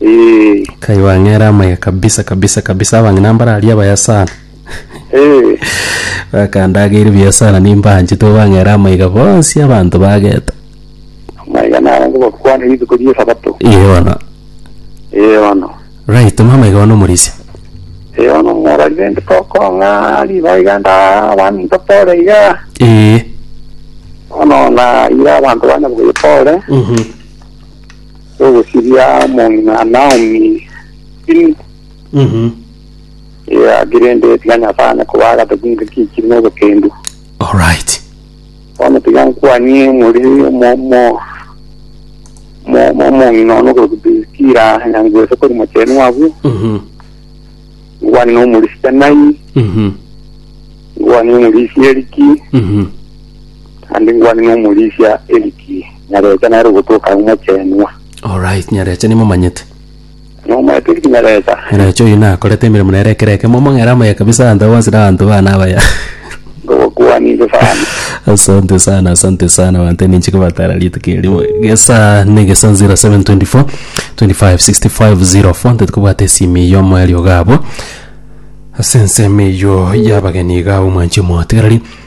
Eh, kai wang'era amaya kabisa kabisa kabisa abang'ina mbararia abaya sana eh, bakandageire buya sana nimbanchete obang'era amaiga bonsi abanto bageta amaiga naro ngobakwane rituko ri'esabato. iye bono Eh, bono. right mama amaiga bono omorisia Eh, bono morarire nde tokong'a riba iga nda abani ntotore iga. ee Bono na ira abanto bane bwepore. mhm Togosiria amo ng'a Naomi tiri Mhm. egaki, rende tiga Nyasae ane koba agataki ng'a kichiri nobokendu. All right. Bono tiga nkwanie more omo- omo- omo- omo- omong'ina one okorokwa Priskila, nyangu ase kori mochenu abwo, Mhm. nkwanie nomorisia Tanai, Mhm. nkwanie omorisia Eriki, Mhm. naende nkwanie nomorisia Eriki. Nyarecha nere ogotoka omochenwa. Alright, Nyarecha nimomanyete. Nomanyete inki Nyarecha? Nyarecha oyio nakorete emeremo nere ekero eke. Momong'era amoye kabisa abanto bonsi na abanto bane abaya. Ngogokuani inche sana. Asante sana, asante sana banto ninche kobatara rituko erimo. Gesa negesa 0724 25 65 04 ntete kobwata esimi eyio omoerio gabo. Ase ensemo eyio y'abageni iga ab'omwanchie omotigareri.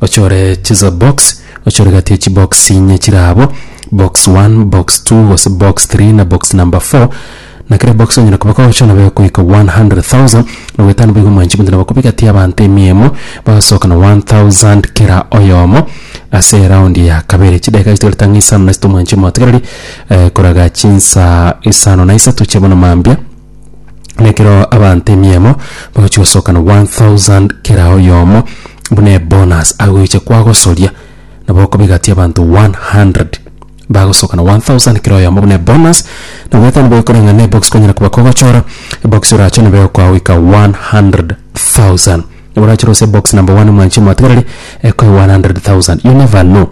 ochore chisa box, ochore gati ye chibox inye chire abo, box one, box two, gose box three na box number four, na kera ebox onyare koba kogocha nabo egoika 100,000, na goeta nigo omwanchi bwensi nabo koba egati y'abanto emia emo, bagasoka na 1000 kera oyomo ase eraundi ya kabere. Chidakika chitagarete ang'e isano na isatu omwanchi omotigereri eh koraga chinsa isano na isato chia bono mambia. na ekero abanto emiemo bagochia gosokana 1000 kera oyomo buna ebonus agoiche kwagosoria nabo okobigatia abanto 100 bagosokana 1000 kera oyomo buna ebonus na goeta nabo ekore ng'a nebox kwanyara koba kogochora ebox orache nabo egokoa goika 100000 nabo orachore gose ebox number one mwanchi omotigereri ekoe 100000 you never know.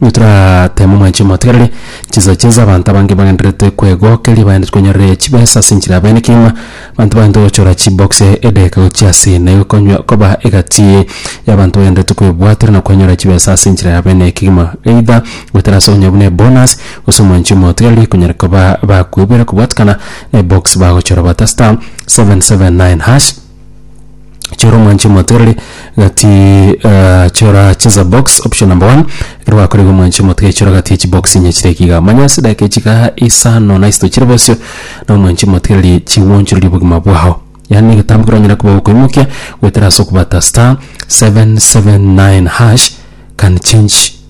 Nigo torateme omwanchi omotegereri, chisache z'abanto abange bagendererete kwegokeria baende tikonyorire chibesa ase enchera ya bene kegima, abanto bagendererete gochora chibox edageka gochia ase ene gokonywa koba egati y'abanto bagendererete kwebwatera na kwenyora chibesa ase enchera ya bene kegima, either goetera ase okonyora buna ebonus gose omwanchi omotegereri konyara koba bakoiborera kobwatekana na ebox bagochora bata *779#. chora omwanche omotigareri gati eh, chora cheza box option number one ekero gwakorire omwanche omotigareri chora gati echi box inye chire ekiga manya ase edageka echiga isano na isito chire bosio na omwanche omotigareri chigwonchoreria obogima bwao yaani egetambe ekero onyare koba okoimokia goetera ase okobata star 779 hash can change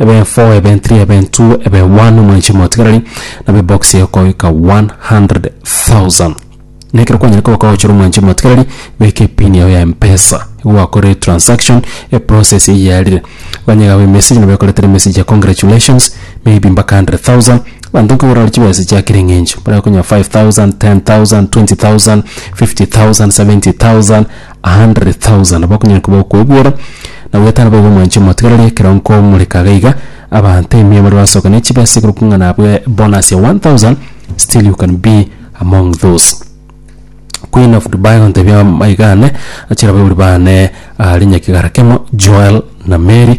Ebefo ebentri ebentu ebe one omwanchi omotigareri nabo ebox eyokoika 100,000. Na ekero kwanyare koba kwagochera omwanchi omotigareri, beka epin yao ya mpesa igo gwakorire transaction, eprocess eye yarire. Ganye igabe emessage nabo ekoretera emessage ya congratulations maybe mpaka 100,000. Abanto nkogora are chibesa chia kera eng'encho, baria bakonyora 5,000, 10,000, 20,000, 50,000, 70,000. a hundred thousand bakonyara koba okoigwera, na goetana boigo mwanche motigarari ekero nkomoreka iga iga, abanto ime baria basoka ne chibesa igoro kung'a nabwe bonus ya one thousand, still you can be among those. Queen of Dubai gontebia amaegane, achilababori bane are nyakigara kemo, Joel na Mary.